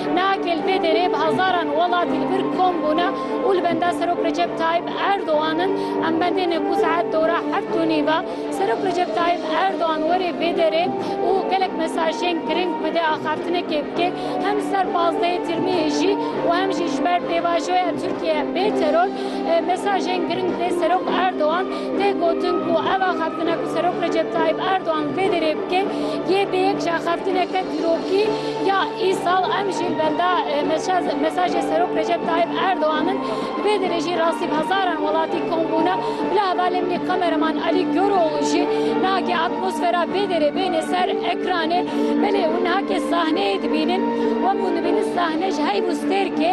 Şûna Keltê Derê bi hezaran welatî li vir kom bûne û li benda Serok Recep Tayyîp Erdogan in. Em bendêne ku saet dora heft û nîve Serok Recep Tayyîp Erdogan were vê derê û gelek mesajên giring bide axaftinekê bike hem li ser pazdehê Tirmiyê jî û hem jî ji ber pêvajoya Tirkiye bê teror mesajên giring bide Serok Erdogan Tê gotin ku ev axaftina ku Serok Recep Tayyip Erdogan vê derê bike yê bi yek ji axaftineke dîrokî ya îsal em jî li benda mesajê Serok Recep Tayyip Erdogan in. Li vê derê jî rastî bi hezaran welatî kom bûne. Bila hevalê min ê kameraman Alî Goroğlu jî niha ke atmosfera vê derê bêne ser ekranê belê û niha ke sahneyê dibînin wek ku dibînin sahne ji heyv û stêrkê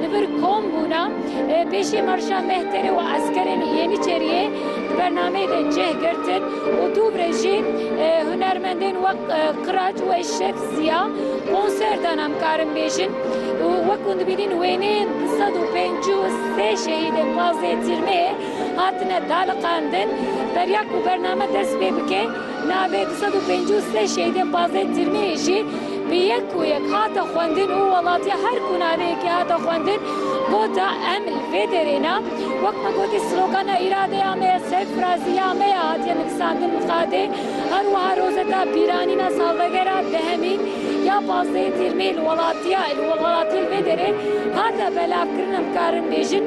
Li vir kom bûna pêşê marşa Mehterê û eskerên Yeniçeriyê di bernameyê de cih girtin û dûvre jî hunermendên wek Qiraç û Eşref Ziya konser dan em karin bêjin û wek hûn dibînin wêneyên du sed û pêncî û sê şehîdên pazdeh Tîrmeyê hatine daliqandin. Beriya ku bername dest pê bike. Navê du sed û pêncî û sê şehîdên pazdeh tirmeyê jî bi yek û yek hate xwendin û welatiya her ku naveyekê hate xwendin got a em li vê derê ne wek me gotî slogana îradeya me ye serfirazî ya me ye hatiye nivisandin li qadê her wiha rozeta bîranîna salvegera dehemî ya pazdehê tirmeyê li welatiya li welatiyê li vê derê hate belavkirin em karin bêjin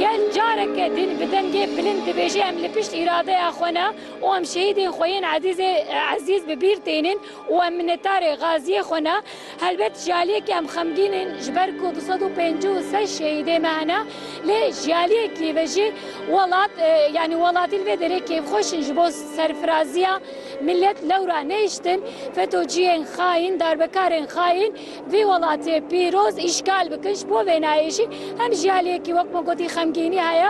gel careke din bi dengê bilind dibêje em li pişt îradeya xwe ne û em şehîdên xwe yên ezîzê ezîz bi bîr tênin û em minetdarê gaziyê xwe ne. Helbet ji aliyekî em xemgîn in ji ber ku du sed û pêncî û sey şehîdê me hene lê ji aliyekî ve jî welat yanî welatî li vê derê kêfxweş in ji bo serfiraziya milet lewra nehiştin fetociyên xayîn darbekarên xayîn vî welatê pîroz îşgal bikin ji bo vênayê jî hem ji aliyekî wek me gotî xemgînî heye.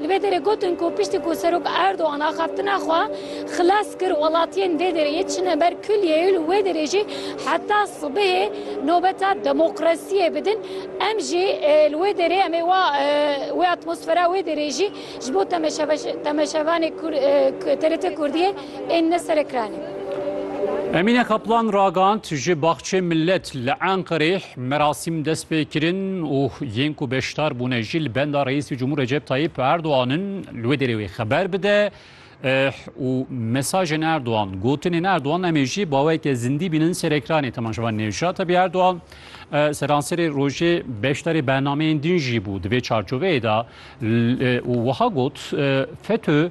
Li vê derê gotin ku piştî ku Serok Erdogan axaftina xwe xilas kir welatiyên vê derê yê çine ber kuliyê û li wê derê jî heta sibehê nobeta demokrasiyê bidin. Em jî li wê derê em ê wa wê atmosfera wê derê jî ji bo temeşevanê TRT Kurdiyê ên ne serekranê. Emîne Kaplan ragand ji Baxçê Millet li Enqerê. Merasîm dest pê kirin û yên ku beşdar bûne jî li benda Reîsê Cumhur Recep Tayyîp Erdogan in li wê derê wê xeber bide û mesajên Erdogan, gotinên Erdogan em ê jî baweke zindî bînin ser ekranê temaşevan Nevjat. Tabi Erdogan seranserê rojê beşdarê bernameyên din jî bû. Di vê çarçoveyê de û wiha got, FETÖ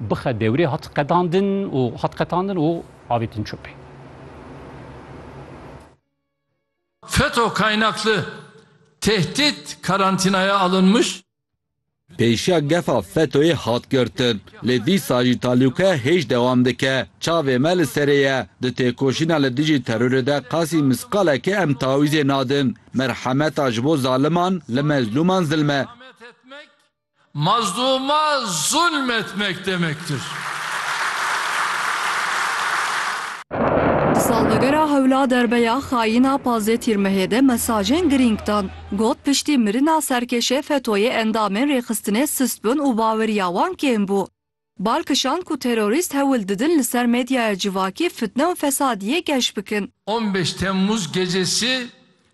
Bixe dewrê hat qedandin û hat qetandin û avêtin çopê. Feto kaynaklı tehdit karantinaya alınmış. Pêşiya gefa Fetoyê hat girtin, lê dîsa jî talûkaya hêj dewam dike. Çavê me li serê ye. Di têkoşîna li dijî terorê de qasî misqalekê em tawîzê nadin. Merhemeta ji bo zaliman li mezlûman zilm e. Mazlûma zulm etmek demektir. Di salvegera hewla derbeya xayîn a pazdeh Tîrmehê de mesajên girîng dan. Got piştî mirina serkêşê FETO'yê endamên rêxistinê sist bûn û baweriya wan kêm bû. Bal kişand ku terorîst hewl didin li ser medyaya civakî fitne û fesadiyê geş bikin. On beş Temmuz gecesi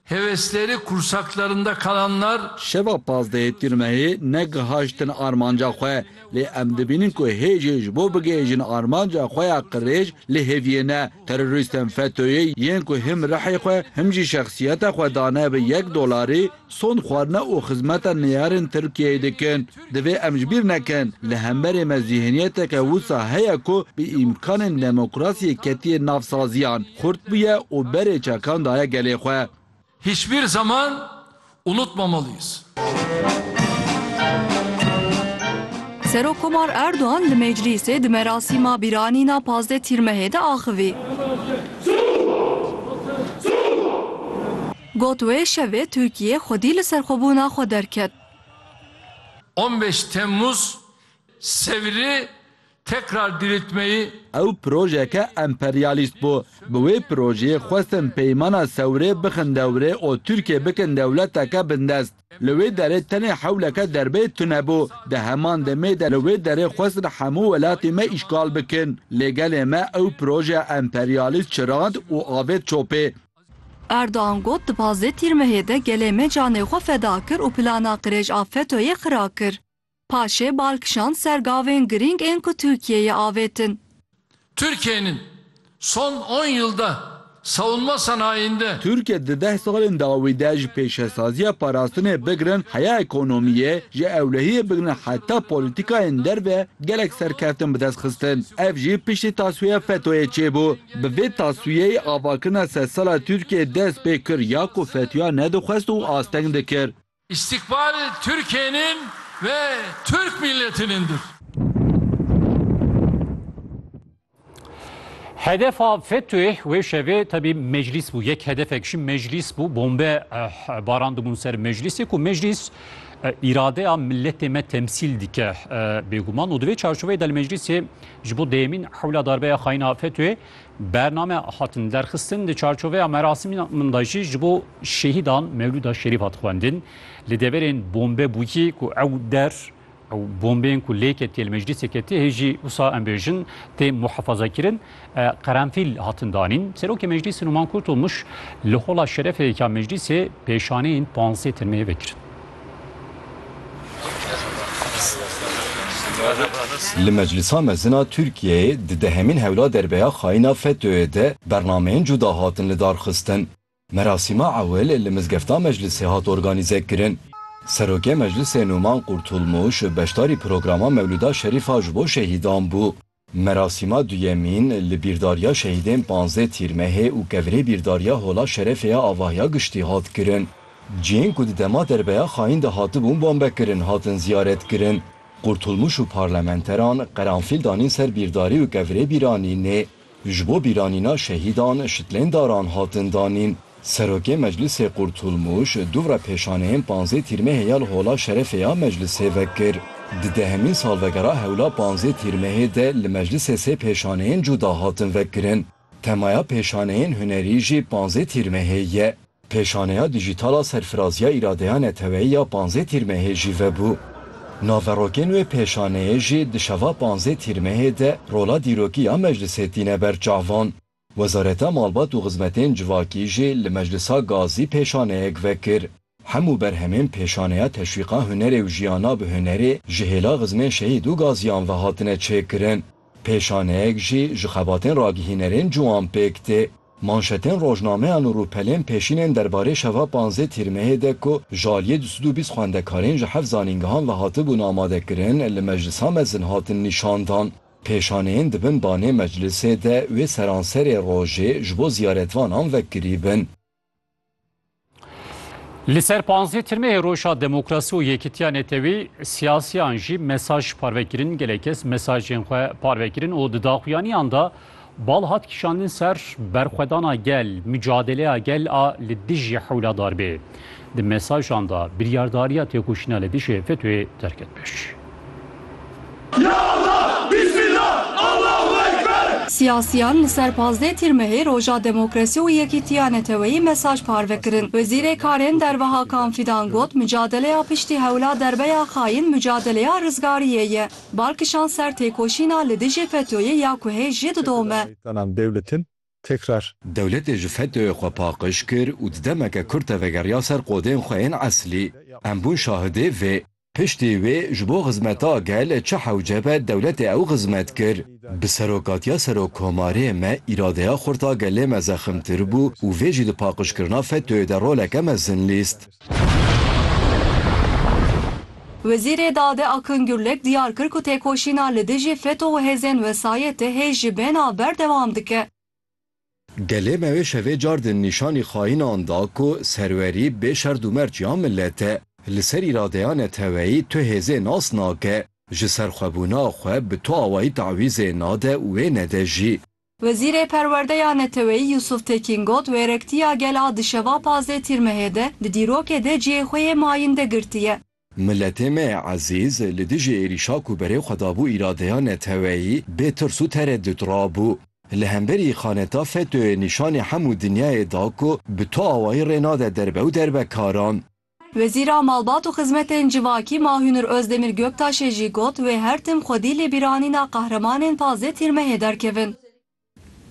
hevesleri kursaklarında kalanlar. Şeva pazdehê Tîrmehê negihajtin armanca xwe, lê em dibînin ku hê jê ji bo bigihêjin armanca xwe ya qirêj li hêviyê ne. Terorîstên FETÖ'yê yên ku him rihê xwe him jî şexsiyeta xwe dane bi yek dolarî, Son xwarina û xizmeta neyarên Tirkiyeyê dikin. Divê em ji bîr nekin, li hemberê me zîhniyeteke wisa heye ku bi îmkanên demokrasiyê ketiye nav saziyan, xurt bûye û berê çekan daye gelê xwe. Hiçbir zaman unutmamalıyız. Serok Komar Erdogan li Meclîsê di merasîma bîranîna pazdeh Tîrmehê de axivî. Got wê şevê Tirkiyê xwedî li serxwebûna xwe derket. On beş Temmuz Sevrî tekrar diriltmeyi. Ew projeke emperyalîst bû. Bi wê projeyê xwestin peymana Sewrê bixin dewrê û Tirkiyê bikin dewleteke bindest. Li wê derê tenê hewleke derbeyê tune bû. Di heman demê de li wê derê xwestin hemû welatê me îşgal bikin. Lê gelê me ew projeya emperyalîst çirand û avêt çopê. Erdogan got di pazdeh Tîrmehê de gelê me canê xwe feda kir û plana qirêj a FETÖ'yê xira kir. Paşê bal kişand ser gavên girîng ên ku Tirkiyeyê avêtin. Tirkiyenin son on yılda savunma sanayinde. Tirkiye di deh salên dawî de ji pêşesaziya parastinê bigirin heya ekonomiyê, ji ewlehiyê bigirin heta polîtîkayên derve gelek serkeftin bi dest xistin. Ev jî piştî tasfiya FETÖ'yê çêbû. Bi vê taswiyeyê avakina sedsala Tirkiyeyê dest pê kir ya ku Fethiya nedixwest û asteng dikir. İstikbal Türkiye'nin ve Türk milletinindir. Hedefa FETÖ'yê wê şevê tebî meclîs bû. Yek hedefek jî meclîs bû. Bombe barandibûn ser meclîsê ku meclîs îradeya milletê me temsîl dike bêguman û di vê çarçoveyê de li meclîsê Ji bo dêyemîn hewla darbeya xayîn a FETÖ'yê bername hatin derxistin. Di çarçoveya merasimînan de jî ji bo şehîdan Mewlûda Şerîf hat xwendin. Li deverên bombe bûyî ku ew der ew bombeyên ku lê ketiye li meclîsê ketiye hê jî wisa em bêjin tê muhefazakirin qerenfîl hatin danîn. Serokê meclîsê Numan Kurtulmuş li hola şerefê yekî ya meclîsê pêşaneyên panzdeh tirmeyê vekirin. Li Meclisa Mezin a Tirkiyeyê di dehemîn hewla derbeya xayîna FETÖ'yê de bernameyên cuda hatin lidarxistin. Merasîma ewil li Mizgefta Meclisê hat organîze kirin. Serokê Meclisê Nûman Qurtulmûş beşdarî programa Mewlûda Şerîf a ji bo şehîdan bû. Merasîma duyemîn li Bîrdariya Şehîdên Panzdeh Tîrmehê û Kevirê Bîrdariya Hola Şerefê ya Avahiya Giştî hat kirin. Cihên ku di dema derbeya xayîn de hatibûn bombekirin hatin ziyaretkirin. Qurtulmuş û parlamenteran qeranfîl danîn ser Bîrdarî û Kevirê Bîranînê. Ji bo bîranîna şehîdan şitlên daran hatin danîn. Serokê Meclisê Qurtulmuş dûvra pêşaneyên panzdeh Tîrmehê ya li Hola Şerefê ya Meclisê vekir. Di dehemîn salvegera hewla panzdeh Tîrmehê de li Meclisê sê pêşaneyên cuda hatin vekirin. Temaya pêşaneyên hunerî jî panzdeh Tîrmehê ye. Pêşaneya dîjîtal a Serfiraziya Îradeya Neteweyî ya panzdeh Tîrmehê jî vebû. Naverokên wê pêşaneyê jî di şeva panzdeh Tîrmehê de rola dîrokî ya Meclisê tîne ber çavan. Wezareta Malbat û Xizmetên Civakî jî li Meclisa Gazî pêşaneyek vekir. Hemû berhemên pêşaneya Teşwîqa Hunerê û Jiyana bi Hunerê ji hêla xizmên şehîd û gaziyan ve hatine çêkirin. Pêşaneyek jî ji xebatên ragihînerên ciwan pêk tê. Manşetên rojnameyan û rûpelên pêşînên derbarê şeva panzdeh Tîrmehê de ku ji aliyê du sed û bîst xwendekarên ji heft zanîngehan ve hatibûn amadekirin li Meclisa Mezin hatin nîşandan. Pêşaneyên di bin banê meclisê de wê seranserê rojê ji bo ziyaretvanan vekirîbin. Li ser panzdeh tirmehê Roja Demokrasî û Yekîtiya Netewî siyasiyan jî mesaj parve kirin, gelek kes mesajên xwe parve kirin û di daxuyaniyan de Bal hat kişandin ser berxwedana gel, mucadeleya gel a li dijî hewla darbê. Di mesajan de biryardariya têkoşîna li dijî FETÖ'yê derket pêş. Siyasiyan li ser pazdeh Tîrmehê Roja Demokrasî û Yekîtiya Neteweyî mesaj parve kirin. Wezîrê Karên Derve Hakan Fîdan got, Mucadeleya piştî hewla derbe ya xayîn mucadeleya rizgariyê ye. Bar kişand ser têkoşîna li dijî FETÖ'yê ya ku hê jî didome. Dewletê ji FETÖ'yê xwe paqij kir û di demeke kurt de vegeriya ser qodên xwe yên eslî. Em bûn şahidê vê. Piştî wê ji bo xizmeta gel çi hewce be dewletê ew xizmet kir. Bi serokatiya Serokkomarê me îradeya xurt a gelê me zeximtir bû û vê jî di paqijkirina FETÖ'yê de roleke mezin lîst. Wezîrê Dade Akın Gürlek diyar kir ku têkoşîna li dijî FETÖ û hêzên wesayetê hê ji bêhna ber dewam dike. Gelê me wê şevê car din nîşanî xaînan da ku serwerî bê şerd û merc ya milet e. Li ser îradeya neteweyî tu hêzê nas nake, ji serxwebûna xwe bi tu awayî tawîzê nade û wê nede jî. Wezîrê Perwerdeya Neteweyî Yûsûf Tekîn got, Wêrektiya gel a di şeva pazdeh Tîrmehê de di dîrokê de cihê xwe yê mayînde girtiye. Miletê me ezîz li dijî êrîşa ku berê xwe dabû îradeya neteweyî bê tirs û teredût rabû. Li hemberî xaneta FETÖ'yê nîşanê hemû dinyayê da ku bi tu awayî rê nade derbe û derbekaran. Wezîra Malbat û Xizmetên Civakî Ma Hûnir Ozdemir Göktaşê jî got, Wê her tim xwedî lê bîranîna qehremanên pazdeh Tîrmehê derkevin.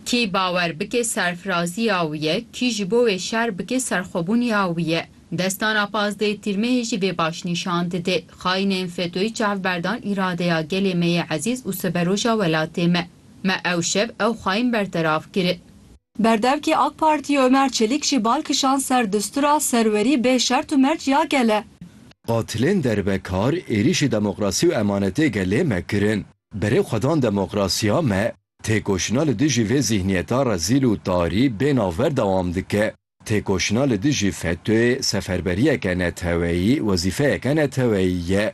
Kî bawer bike serfirazîya wî ye, kî ji bo wê şer bike serxwebûnîya wî ye. Destana pazdeh Tîrmehê jî vê baş nîşan dide. Xayînên Fetoyî çavberdan îradeya gelê me yê ezîz û siberoja welatê me. Me ew şev ew xayîn berteraf kiri. Berdevkê AK Partiyê Ömer Çelik jî bal kişand ser dustûra serwerî bê şert û merc ya gel e. Qatilên derbekar êrîşî demokrasî û emanetê gelê me kirin. Berê xwe dan demokrasiya me. Têkoşîna li dijî vê zîhniyeta rezîl û tarî bê navber dewam dike. Têkoşîna li dijî FETÖ'yê seferberiyeke neteweyî, wezîfeyeke neteweyî ye.